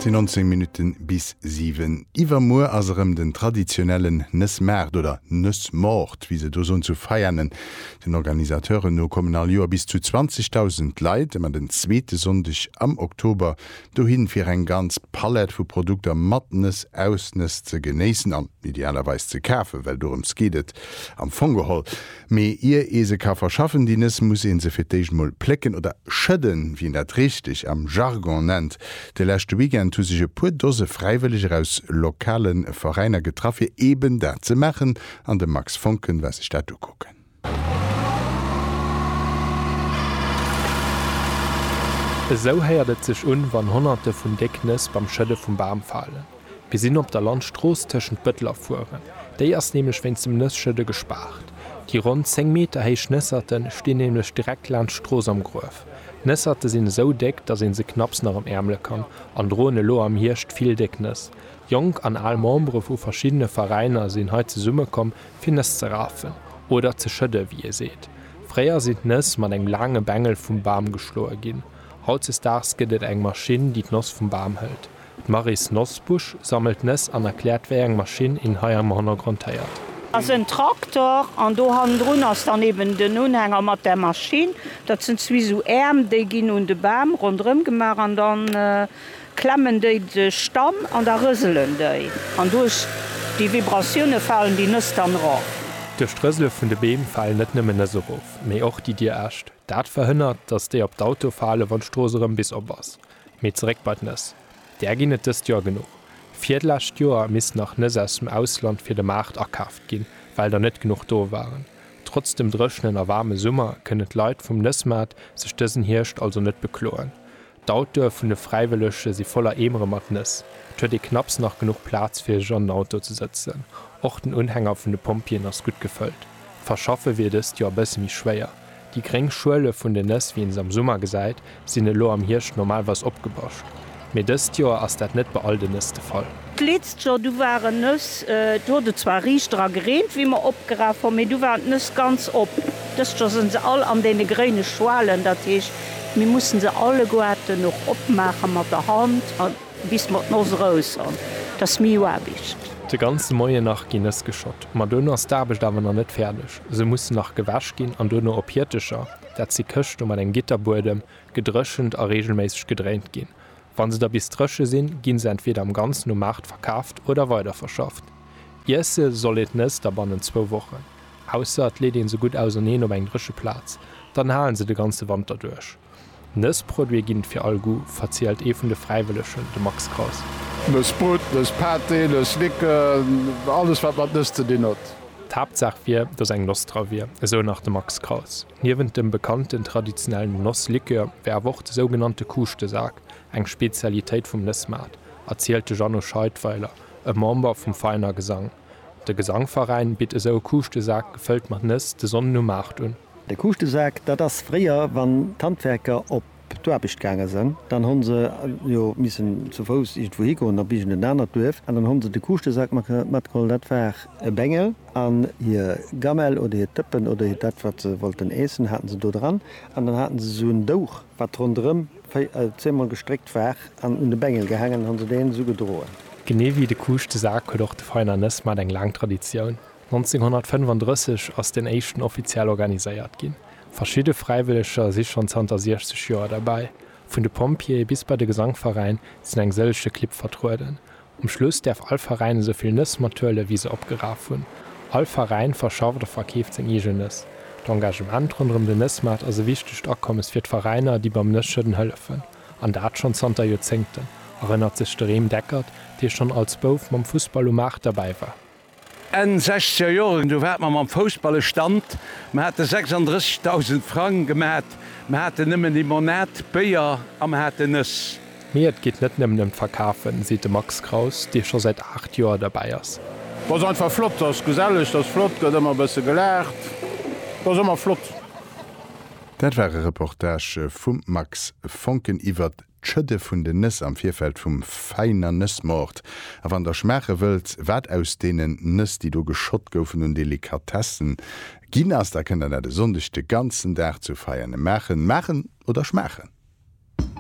Et sinn 19 Minutten bis 7. Iwwermuer ass erëm den traditionellen Nëssmaart oder Nëssmoort, wéi se do soen, zu Veianen. Den Organisateuren no kommen all Joer bis zu 20.000 Leit ëmmer den zweete Sonndeg am Oktober dohin, fir eng ganz Palett vu Produkter mat Nëss, aus Nëss ze genéissen an idealerweis ze kafen, well dorëms geet et am Fong geholl. Mee ier ee se ka verschaffen, déi Nëss, muss ee se fir d'éischt mol plécken oder schëdden, wéi een dat richteg am Jargon nennt. De leschte Weekend hu sech e puer Dose Fräiwëlleger aus lokale Veräiner getraff, fir eeben dat ze maachen an de Max Voncken war sech dat ukucken. Esou héiert et sech un, wann Honnerte vun déck Nëss beim Schëdde vum Bam falen. Mir sinn op der Landstrooss tëschent Bëttel a Furen. Déi ass nämlech wéinst dem Nësschëdde gespaart. Déi ronn 10 Meter héich Nësserte stinn nämlech direkt laanscht d'Strooss am Gruef. Nësserte sinn esou déck, datt ee se knapps nach ëm Äermele kann an droen elo am Hierscht vill déck Nëss. Jonk an al Membere vu verschiddene Veräiner sinn hei zesummekomm, fir Nëss ze rafen, oder ze schëdden, wéi ee seet. Fréier sinn d'Nëss mat engem laange Bengel vum Bam geschloe ginn. Hautzesdaags gëtt et eng Maschinn, déi d'Noss vum Bam hëlt. D'Maryse Nosbusch sammelt Nëss an erkläert wéi eng Maschinn een hei am Honnergrond héiert. Ass en Traktor an do hannendrun ass dann eben den Unhänger mat der Maschinn. Dat sinn zwee sou Äerm, déi ginn un de Bam ronderëm gemaach an dann klemmen déi de Stamm an da rëselen déi an duerch déi Vibratioune falen déi Nëss dann erof. Duerch d'Rësele vun de Beem falen net nëmmen Nëss erof, mee och déi Dir Äscht. Dat verhënnert, datt déi op d'Auto falen, wann d'Strooss erëm bis op ass. Mee zeréck bei d'Nëss. Där ginn et dëst Joer genuch. Virdlescht Joer missten nach Nëss aus dem Ausland fir de Maart akaaft ginn, well der net genuch do waren. Trotz dem dréchenen a waarme Summer kënnen d'Leit vum Nëssmaart sech dësen Hierscht also net bekloen. D'Autoe vun de Fräiwëllege si voller Eemere mat Nëss. Et huet ee knapps nach genuch Plaz fir sech an den Auto ze sëtzen. Och den Unhänger vun de Pompjeeën ass gutt gefëllt. D'Verschaffe wier dëst Joer e bësse méi schwéier. Déi gréng Schuele vun den Nëss, wéi een se am Summer gesäit, sinn elo am Hierscht normalweis opgebascht, mee dëst Joer ass dat net bei all den Nëss de Fall. D'letzt Joer, du waren Nëss, do huet et zwar riichter a gereent, wéi mer opgeraf hunn, mee du waren d'Nëss ganz op. Dëst Joer sinn se all an deene gréine Schuelen, dat heescht, mir mussen se alleguerten och opmaache mat der Hand a bis mer d'Noss erous hunn, dat ass méi Aarbecht. De ganze Moien nach ginn Nëss geschott, ma dono ass d'Aarbecht awer nach net fäerdeg. Se mussen nach gewäsch ginn an duerno op Hiertecher, dat si Këschte mat engem Gitterbuedem, gedréchent a reegelméisseg gedréint ginn. Wa se da bis dréche sinn, gi se entweeder am Ganzen um Maart verkaaft oder weiderverschafft. Iesse soll een d'Nëss da bannent zwou Wochen, ausser et leet ee se gutt auserneen op eng dréche Plaz, dann halen se de ganze Wanter duerch. Nëss Produite ginn et fir all Goût, verzielt ee vun de Fräiwëllegen, de Max Kraus. Nëss Brut, Nëss Pâté, Nëss Licken, alles wat mat Nëss ze dinn huet. D'Haaptsaach wier, datt eng Noss dra wier, esou nach de Max Kraus. Niewent dem bekannten traditionellen Nosslikör wär awer och de sougenannte Kuuschtesak eng Spezialitéit vum Nëssmaart, erzielt de Jeannot Scheidweiler, e Member vum Veiner Gesang. De Gesangveräin bitt esou e Kuuschtesak gefëllt mat Nëss de Sonnden um 8 un. De Kuuschtesak, dat ass fréier, wann d'Handwerker op d'Aarbecht gaange sënn, dann hu se jo missen zu Fouss iergendwou higoen op iergendent anert Duerf an dann hu se de Kuuschtesak matgeholl. Dat war e Bengel an hir Gamell oder hir Tëppen oder dat, wat se wollten iessen, hate se do dran an dann hate se esou en Douch, Wat ronderëm zeemol gestréckt war an un de Bengel gehaangen, hu se deen esou gedroen. Genee wéi de Kuuschtesak huet och de Veräin an Ësmaart eng laang Traditioun. 1935 ass deen éischten offiziell organiséiert ginn. Verschidde Fräiwëlleger si schonn zanter 60 Joer derbäi. Vun de Pompjeeë bis bei de Gesangveräin sinn eng sëllege Clibb vertrueden. Um Schluss däerf all Veräin esou vill Nëss mat huelen, wéi se opgeraf hunn. All Veräin verschafft a verkeeft seng eegen Nëss. D'Engagement ronderëm den Nëssmaart ass e wichtegt Akommes fir d'Veräiner, déi beim Nësschëdden hëllefen, an dat schonn zanter Joerzéngten, erënnert sech de Rem Deckert, dee schonn als Bouf mam Fussball um Maart derbäi war. Enn sechzeger Joren, du waart mer mam Foussballe Stand, mer hate 36.000 Frang gemat, mer haten nëmmen Limonade, Béier a mer haten Nëss. Mee et geet net nëmmen ëm d'Verkafen, seet de Max Kraus, dee scho säit 8 Joer derbäi ass. T'ass einfach flott, t'ass geselleg, t'ass flott, gëtt ëmmer e bësse gelaacht, t'ass ëmmer flott. Dat war e Reportage vum Max Foncken iwwert D'Schëdde vun den Nëss am Virfeld vum Veiner Nëssmoort. A wann der schmaache wëllt, wat aus deenen Nëss, déi do geschott goufen, un Delikatessen ginn ass, da kënnt der dat e Sonndeg de ganzen Dag zu Veianen maachen. Maachen oder schmaachen?